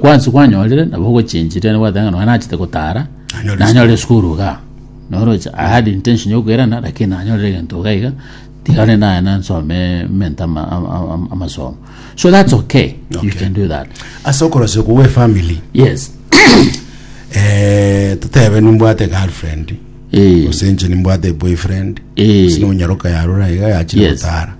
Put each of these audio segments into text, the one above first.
Gwansi gwanyorire nabo ogochenchiria nigo gwateba ng'a nonya nachete gotara Nanyore nanyore esukuru iga noroche I had intention ya koirana lakini nanyorire egento iga iga tiga rende naye nansome mente ama- ama- ama- amasomo so that's okay, you Okay. can do that ase okorosio kogwa efamily yes eh, totebe nimbwate girlfriend Eh, gose inche nimbwate boyfriend eh, gose nonyaroka yarora iga yachire Yes. gotara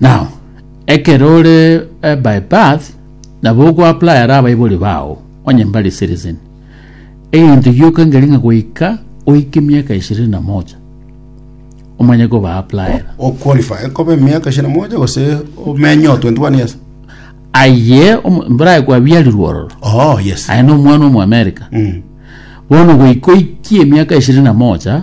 Now, ekero ore eh, by birth, nabo ogoappliera abaibori bao, onye mbare citizen. Egento gioka ngeri ng'a goika oike miaka ishirini na moja, omanye koba appliera. o qualify ekobe miaka ishirini na moja gose omenye o 21 years Aye, omo- mbarae kwabiarirwe ororo. oh yes Aye no omwana omo America. Mm. Bono goika oikie miaka ishirini na moja,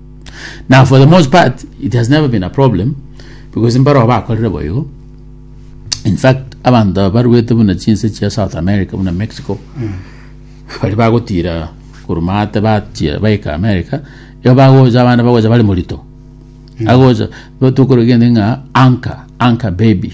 Now for the most part it has never been a problem because mbarao bakorire boigo in fact abanto aba baruete buna chinse chia south america buna mexico bari bagotira korumate bachia baika america igo bagocha abana bagocha bari morito agocha tokorogende ng'a anka anka baby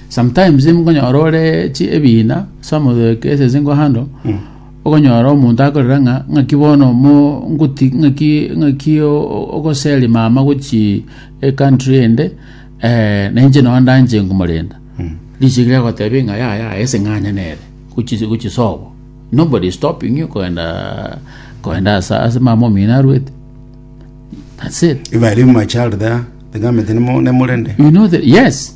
Sometimes mokonyora ore chi ebiina ase omotheke ase esingo hando okonyora omonto akorera ng'a ng'aki bono mo ngoti ng'aki ng'aki o- o- ogoseria mama gochi ecountry ende eh, na inche nonya ndanche nkomorenda richiera riagotebi ng'a yaya yaya ase ng'anya nere gochi gochi sobo nobody is stopping you kogenda kogenda asa ase mama omino arwete that's it If I leave my child there, the government nemo- nemorende. you know the, yes